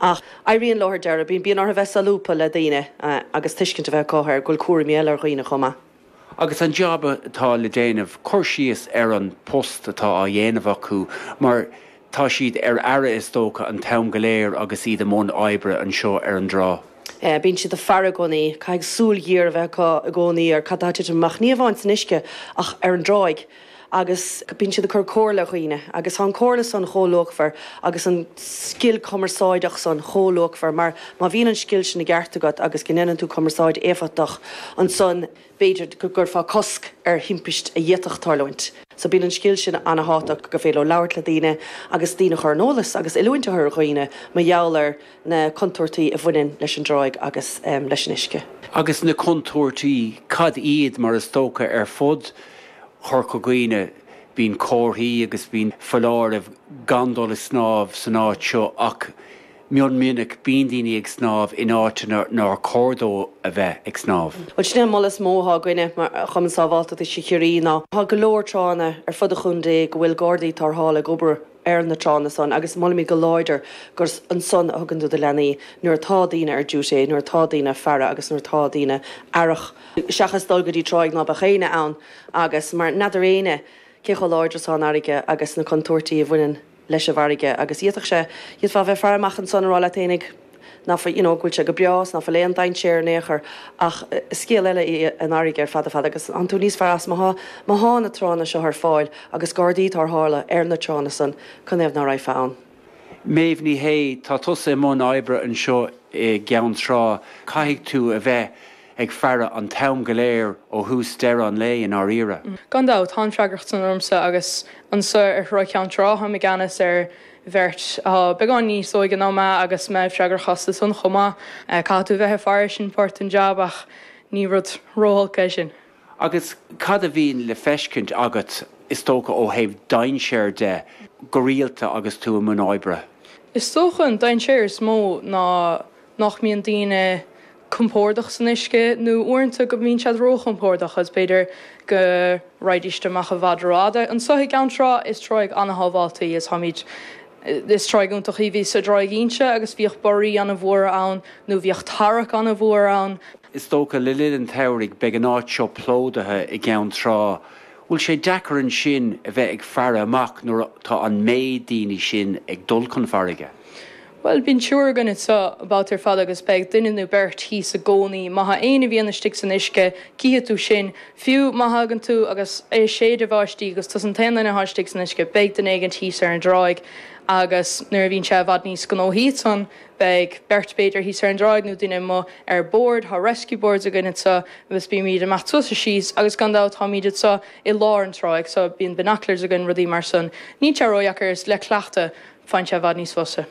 Ach i ndeireadh thiar, bíonn, bíonn orthu bheith solúbtha le daoine agus tuiscint a bheith acu ar go bhfuil cúraimí eile ar dhaoine chomh maith. Agus an jab atá le déanamh, cur síos ar an post atá á dhéanamh acu mar tá siad ar aire is dócha an t-am go léir agus iad i mbun oibre anseo ar an dtrá. Bíonn siad ag faire i gcónaí. Caithfidh súil ghéar a bheith acu i gcónaí ar cad tá ag titim amach, ní hamháin san uisce ach ar an dtráigh. Agus bíonn siad ag cur comhairle ar dhaoine agus tá an chomhairle san chomh luachmhar agus an scil cumarsáideach san chomh luachmhar mar má bhíonn an scil sin i gceart agat agus go ndéanann tú cumarsáid éifeachtach ansan b'fhéidir go gcuirfeá cosc ar thimpist a d'fhéadfadh tarlúint. So bíonn an scil sin ana-thábhachtach, gur féidir leo labhairt le daoine agus daoine a chur ar an eolas agus oiliúint a chur ar dhaoine mar gheall ar na contúirtí a bhaineann leis an dtráigh agus leis an uisce. Agus na contúirtí, cad iad? Mar is dócha ar fud Chorca Dhuibhne bíonn comharthaí agus bíonn foláirimh gan dul ag snámh san áit seo ach, Mion minic bíonn daoine ag snámh in áiteanna nár chóir dóibh a bheith ag snámh. Bhuel sin é an moladh is mó atá againne mar Chumann Sábháilteachta Uisce Chiarraí ná tá go leor tránna ar fud an chontae go bhfuil gardaí tarrthála ag obair ar na tránna san agus molaimid go láidir gur ansan a thugann tú do leanaí nuair atá duine ar duty, nuair atá duine ag faire agus nuair atá duine aireach seachas dul go dtí tráigh ná beadh éinne ann mar n'fheadar éinne cé chomh láidir atá an fharraige agus na contúirtí a bhaineann leis an bhfarraige agus d'fhéadfadh sé, d'fhéadfá, a bheith ag faire amach ansan a rá leat féinig ná fuil, you know, go bhfuil sé go breá, is ná fuil aon dainséar in aon chor, ach is scéal eile í an fharraige ar fad fad agus tánn tú níos fearr as má thá na tránna seo ar fáil agus gardaí tarrthála ar na tránna san, canathaobh ná raghfá ann? Méabh Ní Shé, Tá tusa i mbun oibre anseo i gCeann Trá. Caithfidh tú a bheith ag faire an t-am go léir ó thús deireadh an lae i ndáiríre. Gan dabht, tá an fhreagracht san ormsa agus anso ar Thráigh Cheann Trá, táim i gceannas ar bheirt atá beagán níos óige ná mé agus mé freagrach astu san chomh maith. Caithfidh tú a bheith ag faire, sin páirt den jab ach ní rud ró-olc é sin. Agus cad a bhíonn le feiscint agat, is dócha, ó thaobh dainséar de go rialta agus tú i mbun oibre? Is dócha an dainséar is mó ná nach mbíonn daoine compordach san uisce nó uaireanta go mbíonn siad ró-chompordach agus b'fhéidir go raghaidís amach i bhfad rófhada. Anseo i gCeann Trá is tráigh ana-shábhálta í agus táimid, is tráigh iontach í. Bhíos ar Thráigh Ínse agus bhíodh borraí ana-mhóra ann nó bhíodh tarrac ana-mhór ann. Is dócha le linn an tsamhraidh beidh an áit seo plódaithe i gCeann Trá. Bhfuil sé deacair ansin a bheith ag faire amach nuair atá an méid daoine sin ag dul chun farraige? Bhuel, bíonn triúr againn anseo babhta ar fad agus beidh duine nó beirt thíos i gcónaí. Má thá éinne a bhíonn istigh san uisce, cífidh tú sin. Fiú má thagann tú agus é ag séideadh bháistí agus tusa an t-aon duine athá istigh san uisce, beidh duine éigint thíos ar an dtráigh agus nuair a bhíonn sé i bhfad níos gnóthaí san, beidh beirt b'fhéidir thíos ar an dtráigh nó duine amuigh ar bord. Thá rescue boards againn anseo agus bímid amach suas is síos agus gan dabht táimid anseo i lár an trá so bíonn binoculars againn, rudaí mar san. Níl sé ródheacair, is le cleachtadh. Bíonn sé i bhfad níos fusa.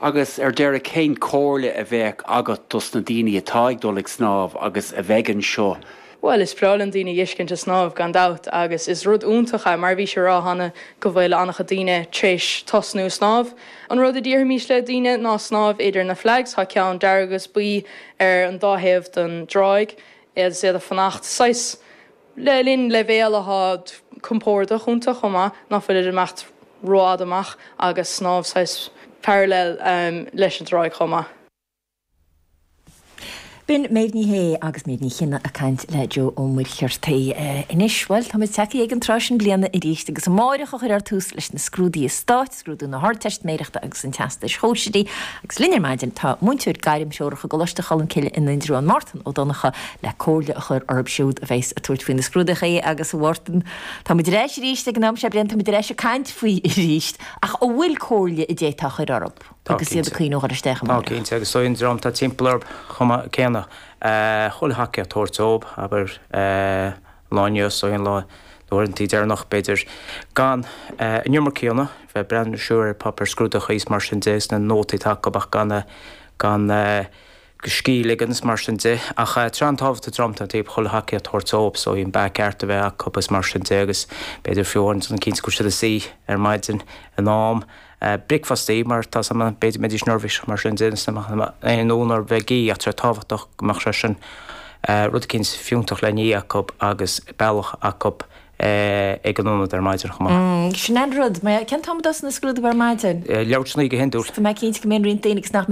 Agus ar deiridh, cén comhairle a bheadh agat dos na daoine atá ag dul ag snámh agus a bheidh anseo? Bhuel, is breá linn daoine a fheiscint ag snámh, gan dabht, agus is rud iontach é, mar a bhís ag rá cheana, go bhfuil an-chuid daoine tar éis tosnú ag snámh. An rud a déarfaimis le daoine ná snámh idir na flags, tá ceann dearg agus buí ar an dá thaobh den dtráigh, agus iad ag fanacht saghas, le linn leibhéal atá compordach iontu chomh maith, ná fuilid ag imeacht rófhada amach agus snámh saghas parallel leis an dtráigh chomh maith. B'in Méabh Ní Shé agus Méabh Ní Chinnéide ag caint le Joe Ó Muircheartaigh. Anois, bhuel, táimid tagtha ag an tráth sin bliana arís agus amárach a chuirfear tús leis na scrúduithe stáit. Scrúdú na hArdteistiméireachta agus an Teastais Shóisearaigh agus linn ar maidin tá múinteoir gairmthreorach i gColáiste Cholmcille in Indreabhán Máirtín Ó Donnchadha le comhairle a chur orb siúd a bheas ag tabhairt faoi na scrúduithe agus a Mháirtín tá muid ar ais arís ag an am seo bliana tá muid ar ais ag caint faoi arís ach an bhfuil comhairle a d'fhéadfá a chur orb agus iad ag cuimhneamh ar a dhul isteach amárach? Tá cinnte agus an dream atá timpeall orb chomh maith céanna chuile thacaíocht a thabhairt dóib abair. Lá inniu, so an lá, na huaireantaí deireanacha, b'fhéidir, gan an iomarca a dhéanamh, bheith breathnú siar ar pháipéir scrúdaithe is mar sin de, 's na nótaí atá acub ach gan, gan, scíth a ligean is mar sin de. Ach tá sé an-tábhachtach don dream atá leo chuile thacaíocht a thabhairt dóib, so an beatha ceart a bheith acub is mar sin de agus b'fhéidir fiú amháin déanamh cinnte go bhfuil siad ina suí ar maidin in am, Bricfeastaí, má tá sé in am, b'fhéidir, go mbeidís neirbhíseach mar sin, déanfaidís na machnaimh aon nó nach mbeidís ag ithe ach, tábhachtach go mbeadh sé sin rud eicínt fiúntach le n-ithe acub agus bealach acub ag an ionad ar maidin chomh maith. Sin an rud, cén t-am a thosaíonn na scrúdaithe ar maidin? Leathuair tar éis a naoi go hiondúil. Tá mé cinnte go mbíonn roinnt daoine agus nach.